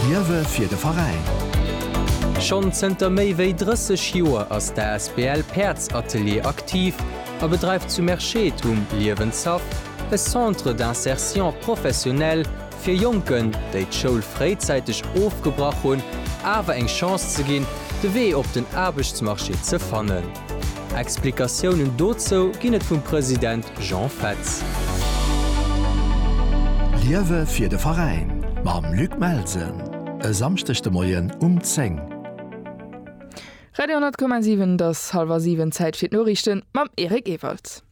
Liewe fir de Veräin! Schonn zënter méi wéi 30 Joer ass d'asbl Päerds Atelier aktiv a bedreift zu Merschede um Liewenshaff e Centre d'insertion professionnelle fir Jonken, déi d'Schoul fréizäiteg ofgebrach hunn, awer eng Chance ze ginn, de Wee op den Aarbechtsmarché ze fannen. Explikatiounen dozou ginn et vum President Jean Fetz. Liewe fir de Veräin mam Luc Melsen e Samschdeg de Moien um 10. Radio 10,7 Et ass hallwer siwen, Zäit fir d'Noriichte mam Eric Ewald.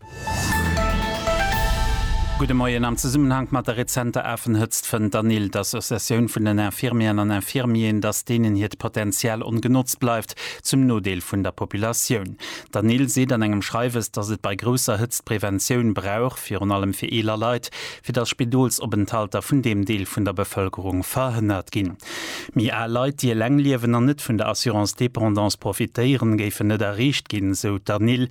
Gudde Moien. Am Zesummenhank mat der rezenter Afenhëtzt fënnt d'ANIL, d'Associatioun vun den Infirmieren an Infirmieren, datt deenen hiert Potenzial ongenotzt bleift, zum Nodeel vun der Populatioun. D'ANIL seet an engem Schreiwes, datt et bei grousser Hëtzt Preventioun brauch, virun allem fir eeler Leit, fir datt Spidolsopenthalter vun deem Deel vun der Bevëlkerung verhënnert ginn. Méi al Leit, déi eleng liewen an net vun der Assurance dépendance profitéieren, géifen net erreecht ginn, sou d'ANIL.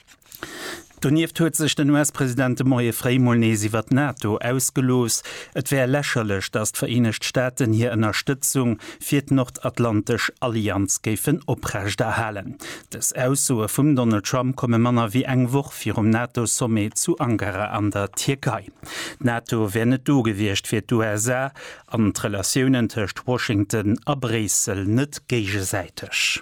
Donieft huet sech den US-President de Moie fréi mol nees iwwer d'NATO ausgelooss. Et wär lächerlech, datt d'Vereenegt Staaten hir Ënnerstëtzung fir d'nordatlantesch Allianz géifen oprechterhalen. Dës Aussoe vum Donald Trump komme manner wéi eng Woch virum NATO-Sommet zu Ankara an der Tierkei. D'NATO wär net do gewiescht fir d'USA an d'Relatiounen tëscht Washington a Bréissel net géigesäiteg.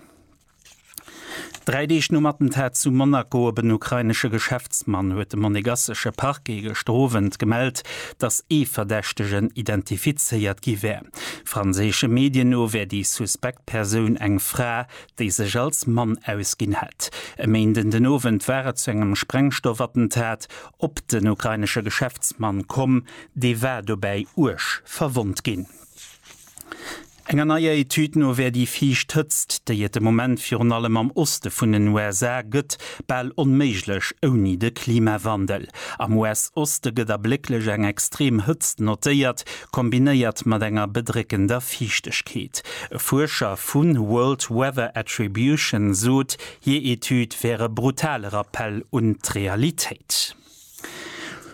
Dräi Deeg nom Attentat zu Monaco op en ukrainesche Geschäftsmann huet de monegassesche Parquet gëschter Owend gemellt, datt ee Verdächtegen identifizéiert gi wär. Franséische Medien no wär déi suspekt Persoun eng Fra, déi sech als Mann ausginn hätt. E Méinden den Owend war et zu engem Sprengstoffattentat op den ukrainesche Geschäftsmann komm, dee war dobäi uerg verwonnt ginn. Enger neier Etüd no wär déi viischt Hëtzt, déi et de Moment virun allem am Oste vun den USA gëtt, bal onméiglech ouni de Klimawandel. Am US-Oste gëtt a blécklech eng extrem Hëtzt notéiert, kombinéiert mat enger bedréckender Fiichtegkeet. E Fuerscher vu World Weather Attribution sot, hir Etüd wär e brutale Rappell un d'Realitéit.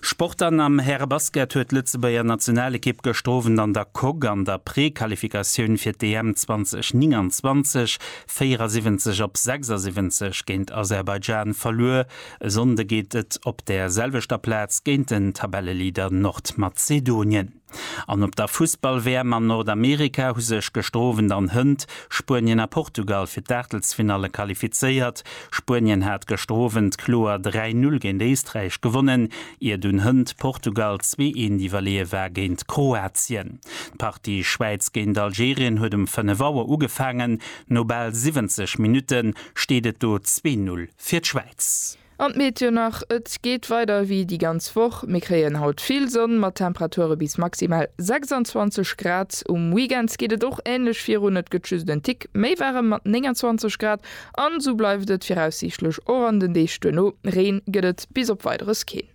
Sport An am Härebasket huet d'Lëtzebuerger Nationalekipp gëschter Owend an der Coque an der Prequalifikatioun fir d'EM 2029, 74 op 76 géint Aserbaidschan verluer. E Sonnde geet et op där selwechter Plaz géint den Tabelleleader Nordmazedonien. An op der Fussball-WM an Nordamerika hu sech gestroowend an Hënt, Spuenien a Portugal, fir d'Aachtelsfinalle qualifizéiert. Spuenien hat gestroowend kloer 3, 0 géint Éisträich gewonnen, iert un Hënt Portugal zwee, 1 iwwerleeë war géint d'Kroatien. D'Partie Schwäiz géint Algerien huet um 5 Auer ugefaangen. No bal 70 Minutte steet et do zwee, 0 fir d'Schwäiz. An d'Meteo nach, Et geet weider ewéi déi ganz Woch, mir kréien haut vill Sonn mat Temperature bis maximal 26 Grad. Um Weekend geet et och änlech virun, et gëtt just en Tick méi waarem mat 29 Grad an esou bleift et viraussiichtlech och an den Deeg duerno. Reen gëtt et bis op Weideres keen.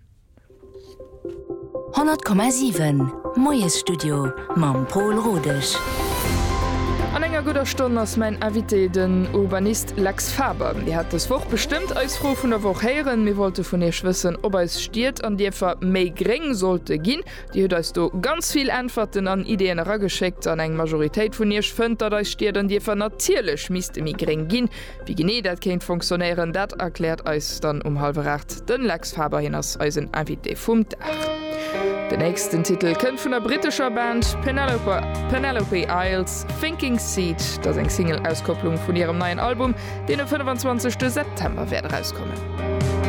100,7 Moiesstudio mam Pol Rodesch. An enger gudder Stonn ass mäin Invité den Urbanist Lex Faber. Dir hat dës Woch bestëmmt eis Fro vun der Woch héieren. Mir wollte vun iech wëssen, ob eis Stied an Dierfer méi gréng sollte ginn. Dir hutt eis do ganz vill Äntwerten an Ideeën erageschéckt an eng Majoritéit vun iech fënnt, datt eis Stied an Dierfer natierlech misste méi gréng ginn. Wéi genee dat kéint fonctionnéieren, dat erkläert eis dann um hallwer aacht de Lex Faber. Hien ass eisen Invité vum Dag. Den nächsten Titel kënnt vun der brittescher Band Penelope, Penelope Isles, Thinking Seed. Dat ass eng Single-Auskopplung vun hirem neien Album, deen e 25 de September wäert erauskommen.